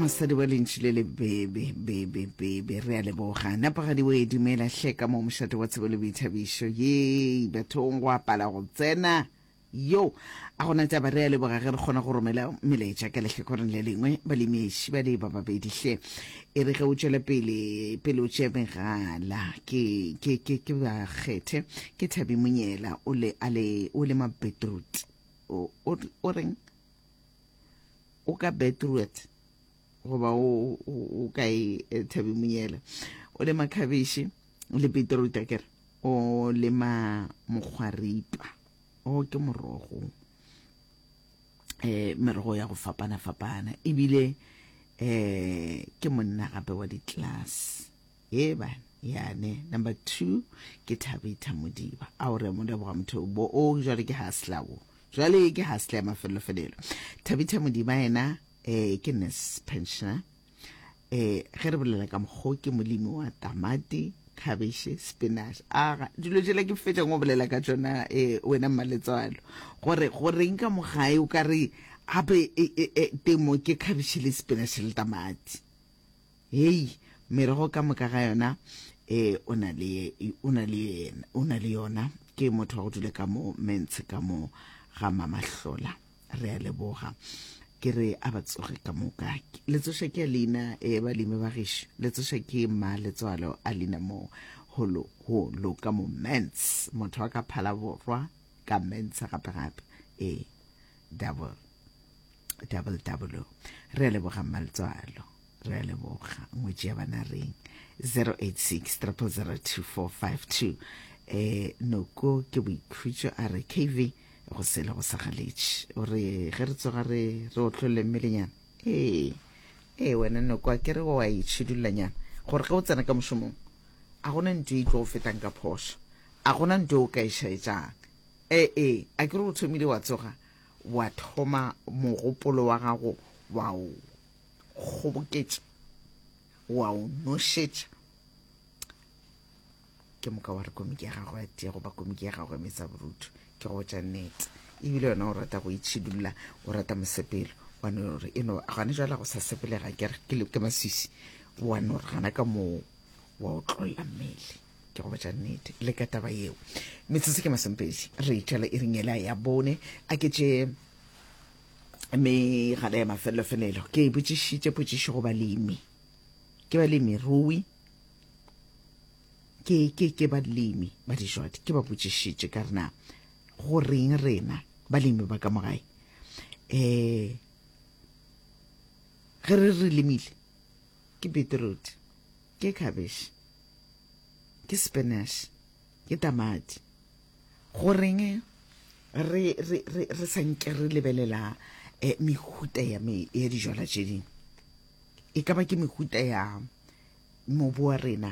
mosadi wa lentši le lebebe bebe bebe re a leboga nepagadi o e dumela hle ka mo mošate wa tsebo le boithabišo ye bathong go apala go tsena yo a gona taba re a leboga ge re kgona go romela melaetša ka lehlakoreng le lengwe balemiši ba le ba babedi hle e re ge o tšwela pele pele o tšea megala ke ke ke ke ba kgethe ke thabi monyela o le a le o le mabetrut o reng o ka beetroot goba o ka e eh, thabi monyela o lema khabeshe le beetroot a kere o lema mokgwaripa o ke morogo eh merogo ya go fapana fapana ebile eh ke monna gape wa di-class Eban, yane, number two, ke Thabitha Modiba. Ao re a mo leboga motho o bo o, jwale ke hasla wo. Jwale ke hasla ya mafelelo felelo. Thabitha Modiba yena eh ke nurse pensioner. Eh ge re bolela ka mokgo ke molimi wa tamati, khabeshe, spinach. Aga dilo jela ke fetša ngo bolela ka tšona eh wena mmaletswalo. Gore go reng ka mogae o ka re gape eh, eh, eh, temo ke khabeshe le spinach le tamati. Hei, merogo ka moka ga yona e o na le, o na le, o na le yona. Ke motho wa go dule ka mo Mentshe ka mo ga Mamahlola. Re a leboga. Ke re a ba tsoge ka moka. Letsoša ke a leina, e balemi ba gešo. Letsoša ke mma letswalo a leina mo holo, holo ka mo Ments. Motho wa ka Phalaborwa, ka Mentsa gape-gape. Ee. Double. Double double. Re a leboga mmaletswalo. Re a leboga. Ngwetši ya bana reng. 086 002452. Eh, noko ke boikhutšo a re KV go sele go sagaletše. O re ge re tsoga re re otlholle mmelenyana. Ee. Ee wena noko a ke re wa itšhidullanyana gore ge o tsena ka mošomong a gona ntho e tlo go fetang ka phošo a gona ntho o ka e šaetšang Ee, a ke re o thomile wa tsoga wa thoma mogopolo wa gago wa o kgoboketša, wa o nošetša? Ke moka wa re komiki ya gago ya tee goba komiki ya gago ya metsaborutho ke go botša nnete. Ebile yona o rata go itšhidulla, o rata mosepelo wa no re e no gane jwale go sa sepelega ke re ke maswisi wa no re gana ka moo wa o tlolla mmele ke go botša nnete le ka taba yeo metsotso ke masompeji re itšwela e ringela ya bone a ke tše megala ya mafelelofelelo ke e botšišitše potšišo go balemi ke balemi rui ke ke ke balemi ba dijwadi ke ba botšišitše ka rena go reng rena balemi ba ka mogae um ge re re lemile ke beetroot Ke khabešhe. Ke spinach. Ke tamati. Goreng re, re, re, re sa nke re lebelela eh, mehuta ya, me, ya dijwala tše dingwe? E ka ba ke mehuta ya mobu wa rena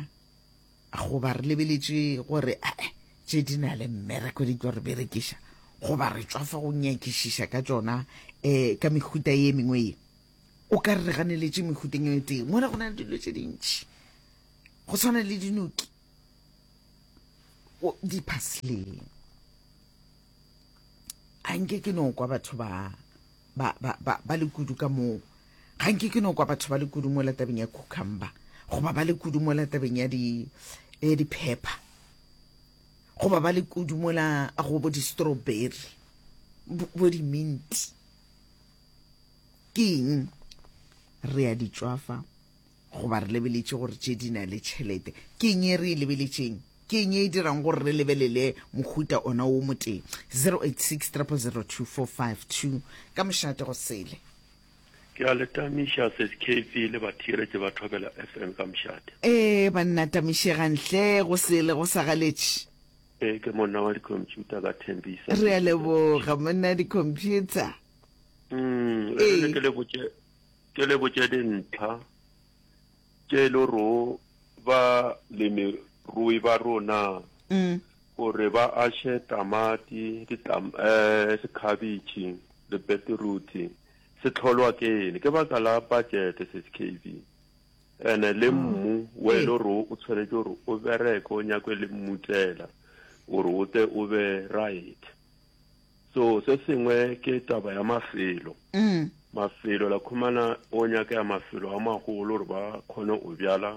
goba re lebeletše gore eh, eh tše di na le mmereko di tlo re berekiša goba re tswa fa go nyakišiša ka tšona um ka mehuta ye mengwe ye o ka re re ganeletše mehuteng e tee mola go na le dilo tše dintši go tshwana le dinoki diphasleng a nke ke no kwa batho ba ba ba ba ba le kudu ka moo ga nke ke no kwa batho ba le kudu mo latabeng ya cucumber goba ba le kudu mo latabeng ya di ya di pepper goba ba le kudu mo la go bo di strawberry bo di mint Ke eng? Re a di tšwafa goba re lebeletše gore tše di na le tšhelete. Ke eng e re e lebeletšeng? Ke eng e e dirang gore re lebelele mohuta ona wo motee? 0860002452 ka mošate go sele. Ke a le tamiša Seskv le bathiretše ba Thobela FM ka mošate. Ee, banna tamišegang hle, go sele go sa galetše. Ee, ke monna wa dikhompšhuta ka Thembisa. Re a leboga, monna dikhompšhuta. mm, ee. ke le botše dintlha tše e le ro ba lemerui ba rona mm. gore ba ashe tamati um eh, sekhabitšhi le beteruti se tlholwa ke ene ke baka la budgete se skv ene le ah. mmu wa e le gore o tshwanetse gore o bereke o nyakwe le mmutsela gore o te o be right So se sengwe ke taba ya mafelo. Mafelo la khumana o nyaka ya mafelo a magolo gore ba khone o bjala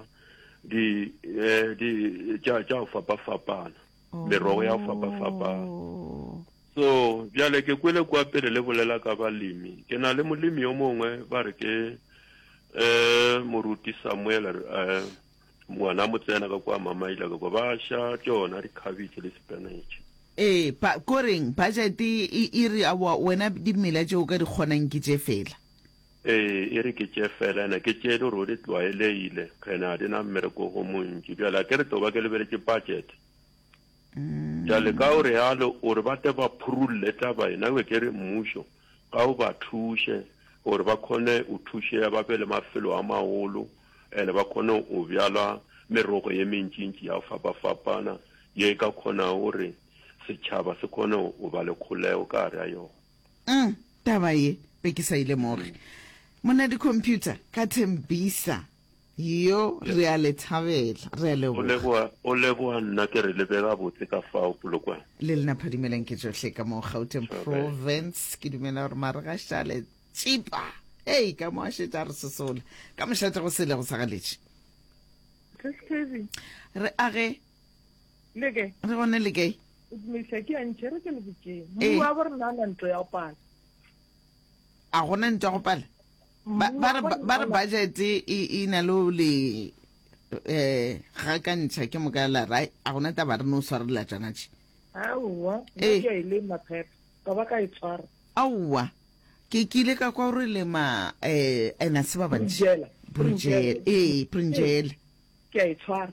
di eh, di tša tša fapa fapana. Merogo ya fapa fapana. Oh. So bjale ke kwele kwa pele le bolela ka balemi. Ke na le molemi yo mongwe ba re ke eh moruti Samuel eh Ngwana mo tsena ka kwa mamaila ka kwa ba sha tšona di cabbage le spinach. Ee, ba, koreng, budget e, e re, aowa, wena dimela tše o ka di kgonang ke tše fela. Ee, e re ke tše fela, ena ke tše e le gore o di tlwaeleile, ena ga di na mmereko go montši. Bjale a ke re tlo ba ke lebeletše budget. Bjale ka o realo, o re ba tle ba phurulle taba ena, ewe ke re mmušo. Ka o ba thuše gore ba kgone o thušea ba be le mafelo a magolo and ba kgone o bjala merogo ye mentšintši ya go fapafapana ye e ka kgonago gore setšhaba se kgone o ba le kgolego ka gare ga yona. Umm taba ye be ke sa e lemoge. Monadi computer ka Tembisa. Yo, re a le thabela. Re a leboga. O leboga, o leboga nna ke re le be gabotse ka fao polokwane. Le lena phadimelang ke tšohle ka mo Gauteng Correct. Province. Ke dumela gore Maregasha a le tšipa. Hei, ka mo a šetše a re sosola ka mošate go sele go sa galetše. Tlhase Kevin, Re age, le ke re gone le kae? o dumediša ke yantšhe re ke le botšeng. Ee. Mmuwa bo re nana ntlo ya go pala. A gona ntwa go pala? Ba, ba, re, ba re budget e, e na le le eh ga ka ntšha ke moka la ra a gona taba re no swarela tsana tše aowa eh. ke ile maphepha ka ba ka e tshwara aowa ke kile ka kwa re le ma eh ena se ba bantši brujela eh brujela ke a e tshwara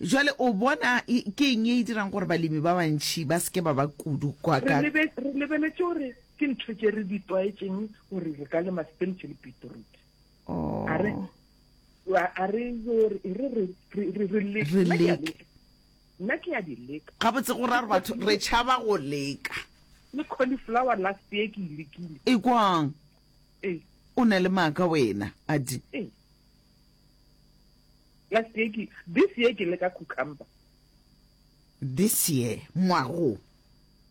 Jwale o bona ke eng ye e dirang gore balemi ba bantši ba se ke ba ba kudu kwa ka? Re lebeletše gore ke ntho tše re di tlwaetšeng gore re ka lema sepentšhe le beetroot. A re a re yo re e re re re re re le Re leke. nna ke ya di leka Gabotse go ra gore batho re tšhaba go leka. le cauliflower last year ke e lekile Ekwang ee o na le maaka wena, Adi. ee Last year ke, this year ke leka cucumber. This year, ngwaga wo.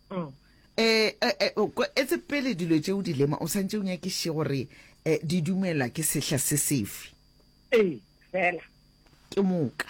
Mm. Eh, eh, eh, o ko- etse pele dilo tše o di lema o santše o nyakiše gore eh, di dumelwa ke sehla se sefe Ee, fela. ke moka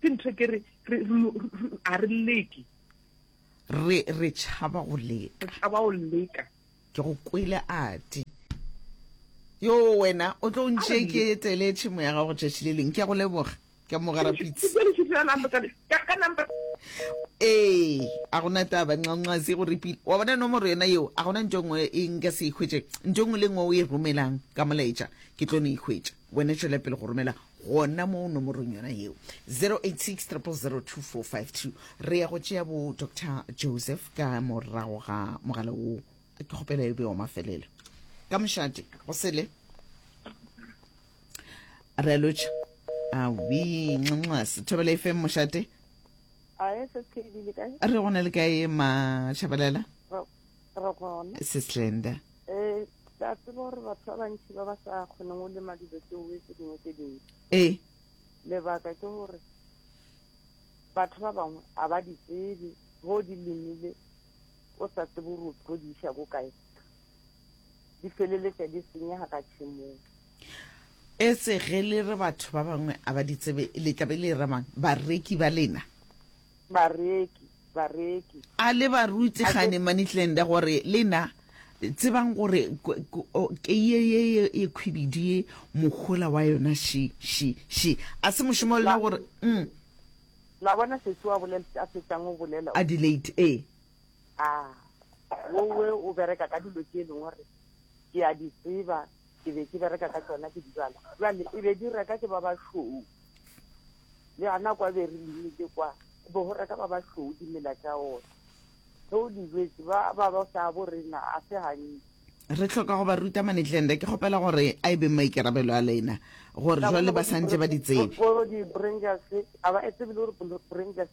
Ke ntho ke re a re leke. Re re tšhaba go leka. Re tšhaba go leka. Ke go kwele ati. Yo wena o tlo ntše ke etele tšhemo ya gago tšatši le leng. Ke go leboga. Ke mogara pitse. Ka number ee a gona taba ncancazi go repile wa bona nomoro yona yeo a gona nto nngwe e nka se e hwetše nto nngwe le nngwe o e romelang ka molaetša ke tlo no e hwetša Wena tšwela pele go romela gona mo nomorong yona yeo 0860002452. Re ya go tšea bo Dr Joseph ka morago ga mogala woo. Ke kgopela e be wa mafelelo ka mošate go sele re lotšha awi nxanxase thobela fm mošate re gona le kae mašabalela Re gona. Seslenda. Eh, ke a tseba gore batho ba bantši ba ba sa kgoneng go lema dilo tse oe tse dingwe tse dintši. Eh. Lebaka ke gore batho ba bangwe a ba di tsebe go di lemile o sa tsebe gore o tlo di iša ko kae di feleletša di senyega ka tšhemong e se ge le re batho ba bangwe a ba di tsebe le tlabe le ramang bareki ba lena bareki, bareki. A le barutsi gane manitlende gore le na tsebang gore kei ye ye ye khwibidi ye mohola wa yona shi, shi, shi. A se mošomo wa lena gore, umm. La bona sesi wa bolela se a fetšang o bolela o. Adelaide, ee. A wo we o bereka ka dilo tše e leng gore ke a di tseba. ke be ke bereka ka tsona ke dijala jale e be di reka ke ba bašweu le gana kwa be re lemile kwa go be go reka ba bašweu dimela tša one ge o dijetse ba ba ba sa bo rena a se gantsi re tlhoka go ba ruta manetlende ke kgopela gore a e beng maikarabelo a lena gore jwale ba santse ba di tsebe gore di-brangers ga ba e tsebe le gore brangers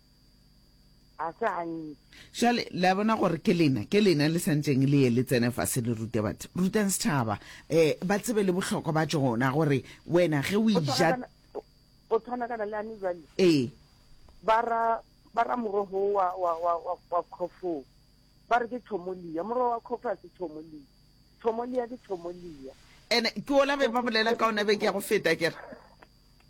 ga se gantsi jale le a bona gore ke lena ke lena le santseng le ye le tsene fa se le rute batho rutang setšhaba um ba tsebe le bohlokwa ba tsona gore wena ge o ija o tshwanakana le ane jale ee ba ra morogo wa wa wa wa wa khofo ba re ke thomolia morogo wa khofo a se thomolia thomolia ke thomolia ene ke ola be ba bolela ka ona be ke ya go feta kere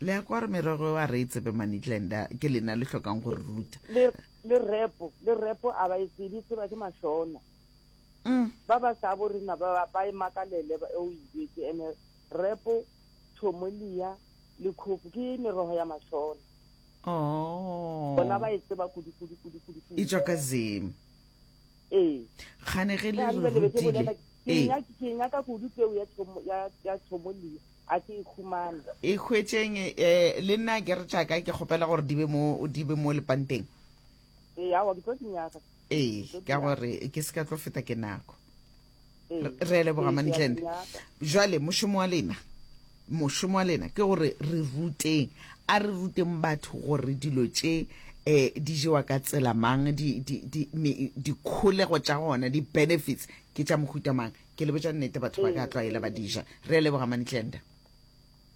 le ya kwa re merogo a re e tsebe manitlenda ke lena le hlokang go re ruta le repo le repo a ba e tsebe tseba ke mašona mm. ba ba sa bo rena ba ba e makalele ba o ibetse ene repo thomolia le khofu ke merogo ya mašona oh bona ba e tseba kudu kudu kudu kudu e tswa ka zim ee gane ge le re rutile ee ke nyaka kudu peo ya thomo ya ya thomo le a ke e khumana e khwetšeng eh le nna ke re tšaka ke kgopela gore di be mo di be mo lepanteng ee awa ke tlo di nyaka ee ka gore ke se ka tlo feta ke nako re leboga mantlende jwale mošomo wa lena mošomo wa lena ke gore re ruteng a re ruteng batho gore dilo tše eh di jewa ka tsela mang di di di di kholego tša gona di benefits ke tša mohuta mang ke le botša nnete batho ba ka tlwaela ba dija re leboga mantlenda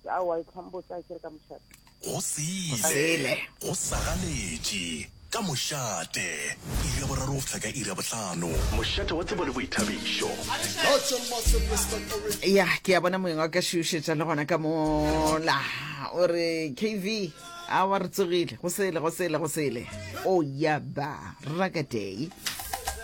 Aowa, e tlhambotsa a ke re ka mošate. Go sele. Go sagaletše. Ka mošate. Iri ya boraro go fihla ka iri ya bohlano. Mošate wa tsebo le boithabišo. ya ke a bona moeng wa ka šiušetša le gona ka mola o re kv a wa re tsogile go sele go sele go sele o oh, ya ba rakaday